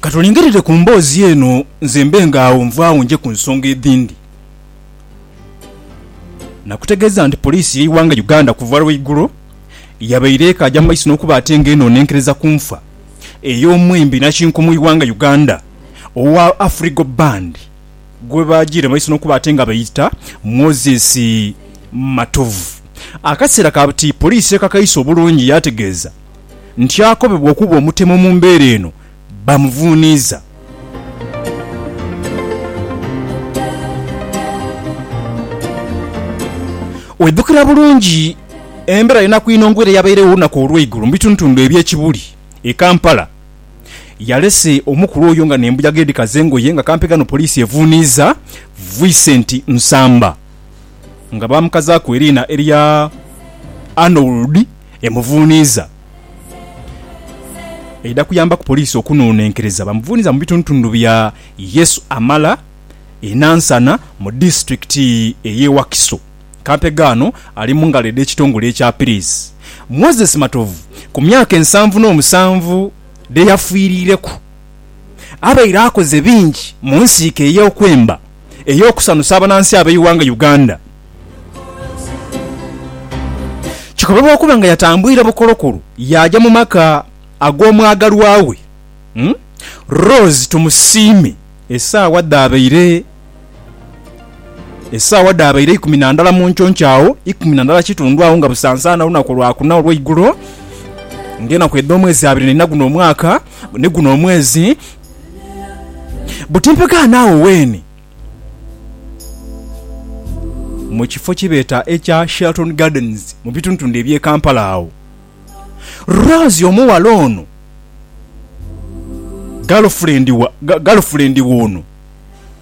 Ka tulingirire ku mboozi eno nze mbe ng'agho nvaagho nje ku nsonga edhindi. Nakutegeeza nti poliisi y'eighanga Uganda kuva lwa igulo yabaire ekaaja mu maiso n'okuba ate nga enoonenkereza ku nfa ey'omwembi nakinku mu ighanga Uganda owa Afrigo Band gwe baajiira mu maiso n'okuba ate nga beeta Moses Matovu. Akaseera kati poliisi ekakaise obulungi yaategeeza. nti akobebwa okuba omutemu mu mbeera eno bamuvuuniiza. Oidhukira bulungi embeera y'enaku inongo ere eyabairegho olunaku olw'eigulo mu bitundutundu eby'e Kibuli e Kampala. Yalese omukulu oyo nga n'embuyaga edhikaza engoye nga kampi ghano poliisi evuuniiza Vicent Nsamba nga baamukazaaku eriina erya Arnold. emuvuuniiza eidha kuyambaku poliisi okunoonenkereza bamuvuuniiza mu bitundutundu bya Yesu Amala e Nansana mu disitulikiti ey'e Wakiso. Kampega ano ali mu ngalo edh'ekitongole ekya Pirizi. Moses Matovu ku myaka ensanvu n'omusanvu dhe yafiirireku abaire akoze bingi mu nsiike ey'okwemba ey'okusanusa abanansi ab'eighanga Uganda. Kikobebwa okuba nga yatambwire bukolokolo yaaja mu maka ag'omwagalwa we, Rose Tumusiime esaawa dhaabaire esaawa dhaabaire ikumi na ndala mu nconco agho, ikumi na ndala kitundu agho nga busansaana olunaku Lwakuna olweigulo ng'enaku edh'omwezi abiri naina guno omwaka ni guno omwezi. Buti mpegaano agho weene. mu kifo kye beeta ekya Sheraton Gardens mu bitundutundu eby'e Kampala agho. Rose omughala ono, galufulendi wa galufulendi w'ono